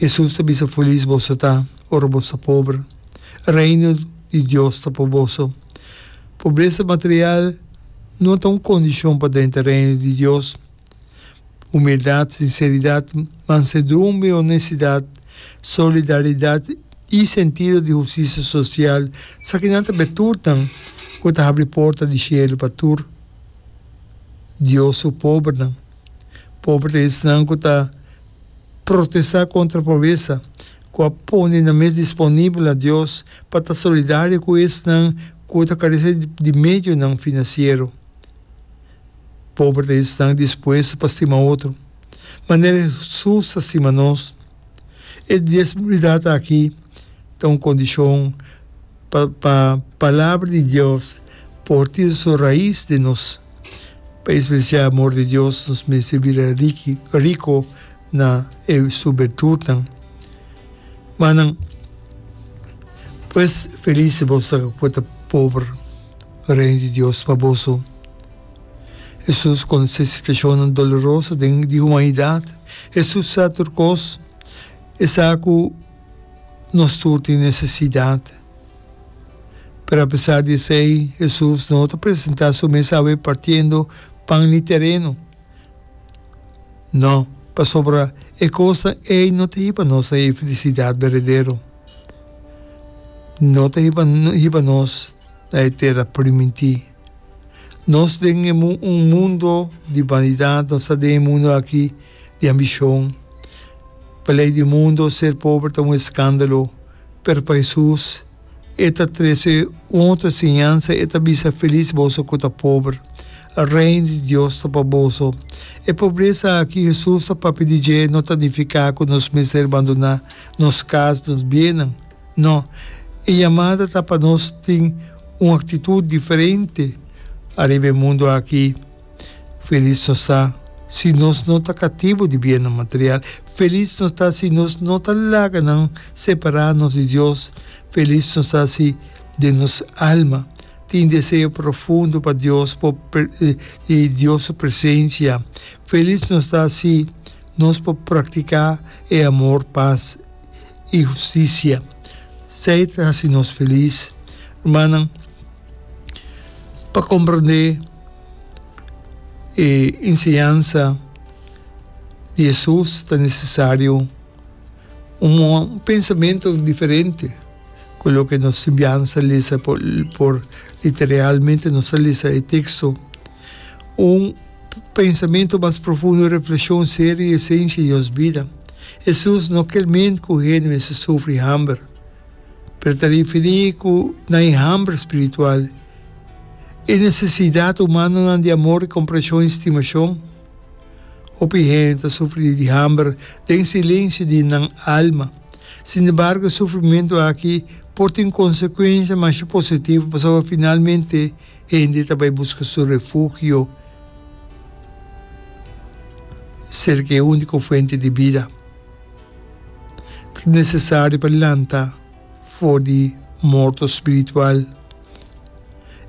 Hesus ta bisa, Felis boso ta ora boso ta pober, Reino di Dios ta pa boso. Pobresa material no a ta un kondishon pa drenta Reino di Dios. Humildat, sinseridat, mansedumbe, onestidat, solidaridat i sentido di hustisia sosial sa kinan ta bertutnan ku ta habri porta di shelu pa tur Dios su pobernan. Poberte esnan ku ta protestá kontra pobesa, ku a pone nan mes disponibel na Dios pa ta solidario ku esnan ku ta karese di medionan finansiero. Poberte esnan dispuesto pa stima otro, manera Hesus ta stima nos. E diezmidad aki ta un condicion pa pa Palabra di Dios por tin su raiz den nos. Pa e specia amor di Dios nos mester bira riki rico na e su bertutnan. Manan, pues feliz si boso ta pober. Reino di Dios pa boso. Hesus konse situashonnan doloroso den di humanidat. Hesus sa tur kos, e sa ku nos tur tin nesesidat. Pero apesar di esei, Hesus no ta presentá su mes awe partiendo pan ni tereno. No, pasobra e kosnan ei no ta hiba nos na e felisidat berdadero. No ta hiba hiba nos na e tera primintí. Nos den e mun un mundo di banidat nos ta den e mundo aki di ambishon pa lei di mundo ser pober ta un eskandalo pero pa Hesus e ta trese un otro enseñansa e ta bisa felis boso ku ta pober reino di Dios ta pa boso e pobresa aki Hesus ta papia di dje no ta nifiká ku nos mester bandona nos kas nos biennan. No. E yamada ta pa nos tin un aktitut diferente ariba e mundu aki. Felis nos ta si nos no ta katibu di biennan material. Felis nos ta si nos no ta laga nan separá nos di Dios. Felis nos ta si den nos alma tin deseo profundo pa Dios por di Dios su presensia. Felis nos ta si nos por praktiká e amor pas. i hustisia. Esei ta hasi nos felis. Rumannan, pa komprondé e enseñansa di Hesus ta nesesario un pensamentu diferente ku loke nos simbiansa lesa por literalmente nos ta lesa e teksto. Un. pensamentu mas profundo, reflekshon serio i esenshi di nos bida. Hesus no kel mente ku hende mester sufri hamber, pero ta rifirí ku nan e hamber spiritual, e nesesidat humanonan di amor i komprenshon i stimashon. Hopi hende ta sufri di hamber den silenshi di nan alma. Sinembargo e sufrimentu aki por tin konsekuensia masha positivo pasobra finalmente, Hende ta bai buska su refugio serka e úniko fuente di bida. Ta nesesario pa lanta for di morto spiritual.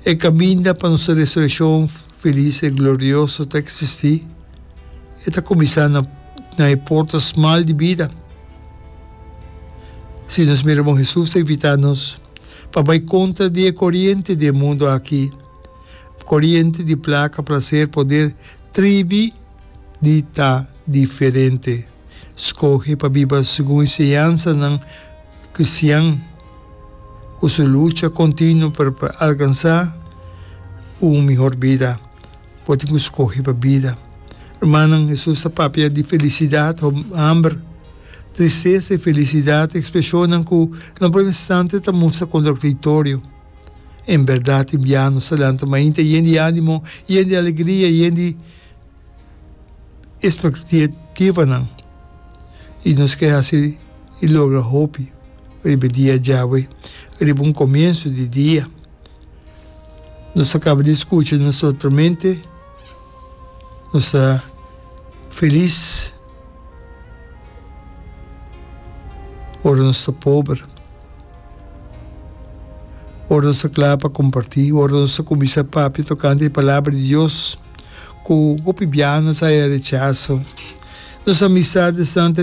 E kaminda pa nos resurekshon felis i glorioso ta eksistí. E ta kuminsá na na e porta smal di bida. Si nos mira bon, Hesus ta invitá nos. Pa bai kontra di e koriente di e mundu aki, koriente di plaka, plaser, poder, tribi di ta diferente. Skohe pa biba segun enseñansanan kristian ku su lucha kontinuo pa alkansá un mihor bida. Bo tin ku skohe pa bida. Rumannan, Hesus ta papia di felisidat, homber, tristesa i felisidat, ekspreshonnan ku na bo instante ta mustra kontradiktorio. En bèrdat, imbiano sa lanta mainta yen di ánimo, yen di alegria, yen di espektativanan, i nos ke hasi i logra hopi riba e dia djawe, riba un komiensu di dia. Nos ta caba di scucha nos otro mente, nos ta feliz ora nos ta pober, ora nos ta cla pa comparti, ora nos ta cuminsa papia tocante e Palabra di Dios, cu hopi biaha nos haya rechazo, nos amistardes nan ta